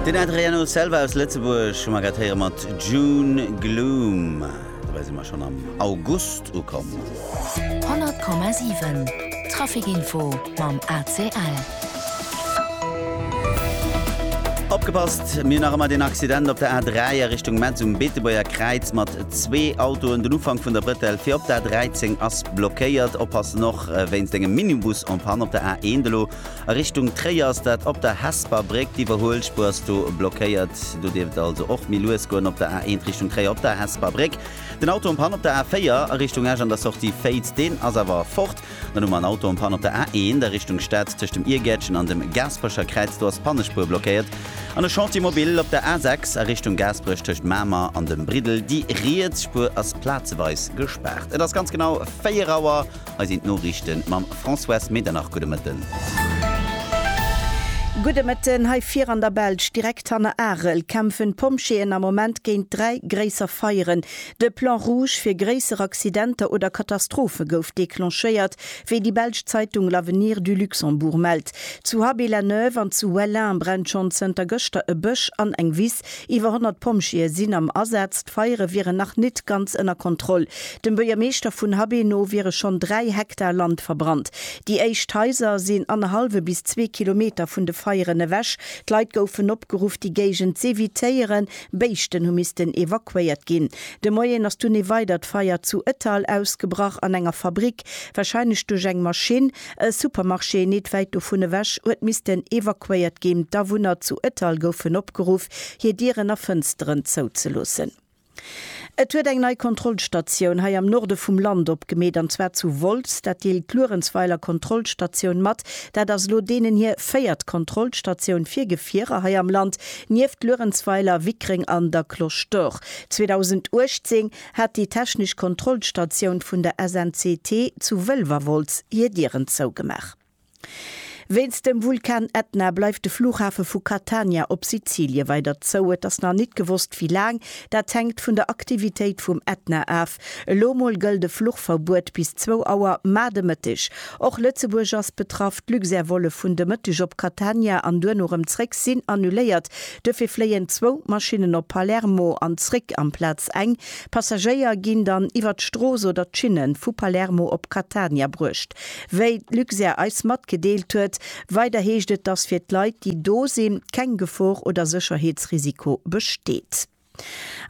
Den Adriano Selva aus Lëtzebuerg hu mer grad héiere mat June Gloom. Dobäi si mer schonn am August ukomm. 100,7 Traficinfo mam ACL. Opgepasst, mir hunn nach ëmmer deen Accident op der A3 a Richtung Metz um Beetebuerger Kräiz mat zwee Autoen. Den Ufank vun der Brëttel fir op der A13 ass blockéiert. Oppassen och wéinst engem Minibus en panne op der A1 elo. A Richtung Tréier ass dat op der Hesper Bréck. D'Iwwerhuelspur ass do blockéiert. Do dierft et also och méi lues goen op der A1 Richtung Tréier op der Hesper Bréck. Den Auto am Panne op der A4 a Richtung Esch an der Sortie Féiz, deen ass awer fort. Dann hu mer en Auto am Panne op der A1 a Richtung Stad tëscht dem Irgäertchen an dem Gaasperecher Kräiz. Do ass d'Pannespur blockéiert. An e Chantier mobile op der A6 a Richtung Gaasperech tëscht Mamer an dem Briddel. Déi riets Spur ass plazeweis gespaart. Et ass ganz genau 4 Auer. Hei sinn d'Noriichten mam Françoise Medernach. Gudde Mëtten. Gudde Mëtten. Hei vir an der Belsch, direkt hanner Arel, kämpfen d'Pompjeeën am Moment géint dräi gréisser Feieren. De Plan rouge fir gréisser Accidenter oder Katastrophe gouf declenchéiert, wéi déi belsch Zeitung L'Avenir du Luxembourg mellt. Zu Haby-la-Neuve an zu Wellin brennt schonn zënter gëschter e Bësch an eng Wiss. Iwwer 100 Pompjeeë sinn am Asaz. D'Feiere wieren nach nit ganz ënner Kontroll. Dem Buergermeeschter vun Habé no wiere schonn 3 Hektar Land verbrannt. Déi éischt Haiser sinn annerhallwe bis zwee Kilometer vun de Feieren ewech. D'Leit goufen opgeruff, déi Géigend z'evitéieren. Béischten hu missten evakuéiert ginn. De Moien ass dunn ee weidert Feier zu Ettal ausgebrach an enger Fabrik, warscheinlech duerch eng Maschinn. E Supermarché nit wäit dovun ewech huet missten evakuéiert ginn. D'Awunner zu Ettal goufen opgeruff, hir Dieren a Fënsteren zouzeloossen. Et huet eng nei Kontrollstatioun hei am Norde vum Land opgemeet, an zwar zu Wolz. Dat deelt d'Luerenzweiler Kontrollstatioun mat. Dat ass elo deenen hir véiert Kontrollstatioun fir Gefierer hei am Land, nieft Luerenzweiler, Wickreng an der Cloche d'Or. 2018 hat déi technesch Kontrollstatioun vun der SNCT zu Wëlwerwolz hir Dieren zougemaach. Wéinst dem Vulkan Etna bleift de Flughafe vu Catania op Sizilie weider zou. Et ass nach nit gewosst wéi laang, dat hänkt vun der Aktivitéit vum Etna af. Elo mol gëllt e Fluchverbuet bis zwou Auer mar de Mëtteg. Och Lëtzebuerg ass betraff, d'Luxair-Volle vun de Mëtteg op Catania an duerno rëm zréck sinn annuléiert. Duerfir fléien zwou Maschinnen op Palermo an zréck amplaz eng. Passagéier ginn dann iwwer d'Strooss oder d'Schinne vu Palermo op Catania bruecht. Wéi d'Luxair eis matgedeelt huet, weider heescht et, dass fir d'Leit, déi do sinn, keng Gefor oder Sécherheetsrisiko besteet.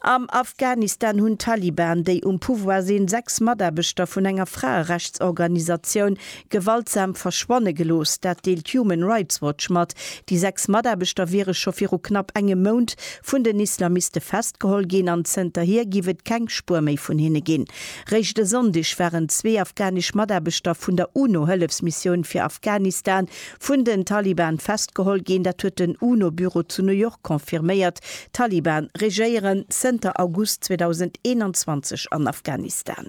Am Afghanistan hunn d'Taliban, déi um Pouvoir sinn, sechs Mataarbechter vun enger Fraerechtsorganisatioun gewaltsam verschwanne gelooss. Dat deelt Human Rights Watch mat. Déi sechs Mataarbechter wiere scho viru knapp engem Mount vun den Islamiste festgeholl ginn an zënterhier géif et keng Spuer méi vun hinne ginn. Réischt e Sonndeg waren zwee afghanesch Mataarbechter vun der UNO-Hëllefsmissioun fir Afghanistan Vun den Taliban festgeholl ginn, dat huet den UNO-Büro zu New York confirméiert. D'Taliban regéieren zënter August 2021 an Afghanistan.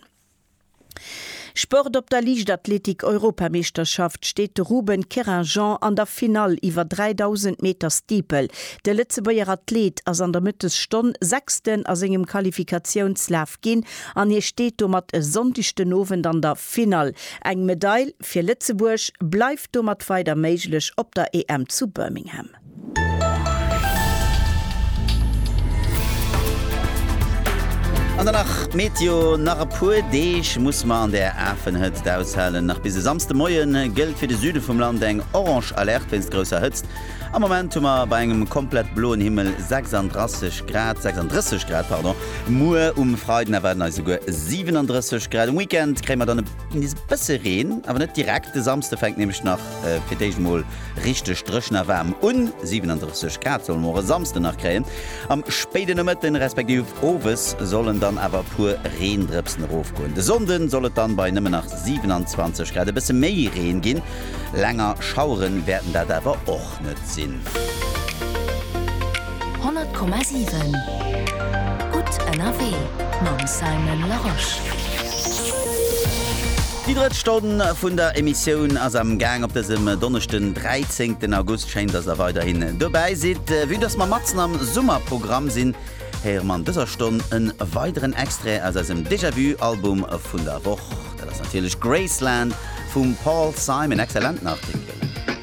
Sport Op der Liichtathletik-Europameeschterschaft steet de Ruben Querinjean an der Finall iwwer 3000 Meter Steeple. De Lëtzebuerger Athleet ass an der Mëttesstonn Sechsten a sengem Qualifikationslaf ginn an hie steet domat e Sonndeg den Owend an der Finall. Eng Medail. fir Lëtzebuerg bleift domat weider méiglech op der EM zu Birmingham. An dann nach d'Meteo, Nach e puer Deeg muss mer an der afen Hëtzt aushalen. Nach bis e Samsde Moien gëllt fir de Süde vum Land eng orange Alerte wéinst grousser Hëtzt. Am Moment hu mer bei engem komplett bloen Himmel 36 Grad, 36 Grad, pardon. Muer um Freiden erwaarden eis esouguer 37 Grad. Um Weekend kréie mer dann e. Ginn nees e bësse Reen, awer net direkt. De Samsde fänkt nämlech nach fir d'éischt emol richteg dréchen a waarm un. 37 Grad solle mer och e Samsden nach kréien. Am spéiden Nomëtten, respektiv owes sollen dann awer e puer Reendrëpsen erofgoen. De Sonnde soll et dann bei nëmmen nach 27 Grad e bësse méi Reen ginn. Länger Schaueren wäerten dat awer och. iwwerhaapt net sinn. 100,7 Gutt ënnerwee mam Simon Larosche. Déi drëtt Stonn vun der Emissioun ass am Gaang. Op dësem Donneschden 13 August. Schéin, dass der weiderhin dobäi sidd. Vue dass mer matzen am Summerprogramm sinn, héiere mer an dëser Stonn e weideren Extrait aus eisem Déjà-Vu Album vun der Woch. Dat ass natierlech Graceland vum Paul Simon. Excellenten Artikel.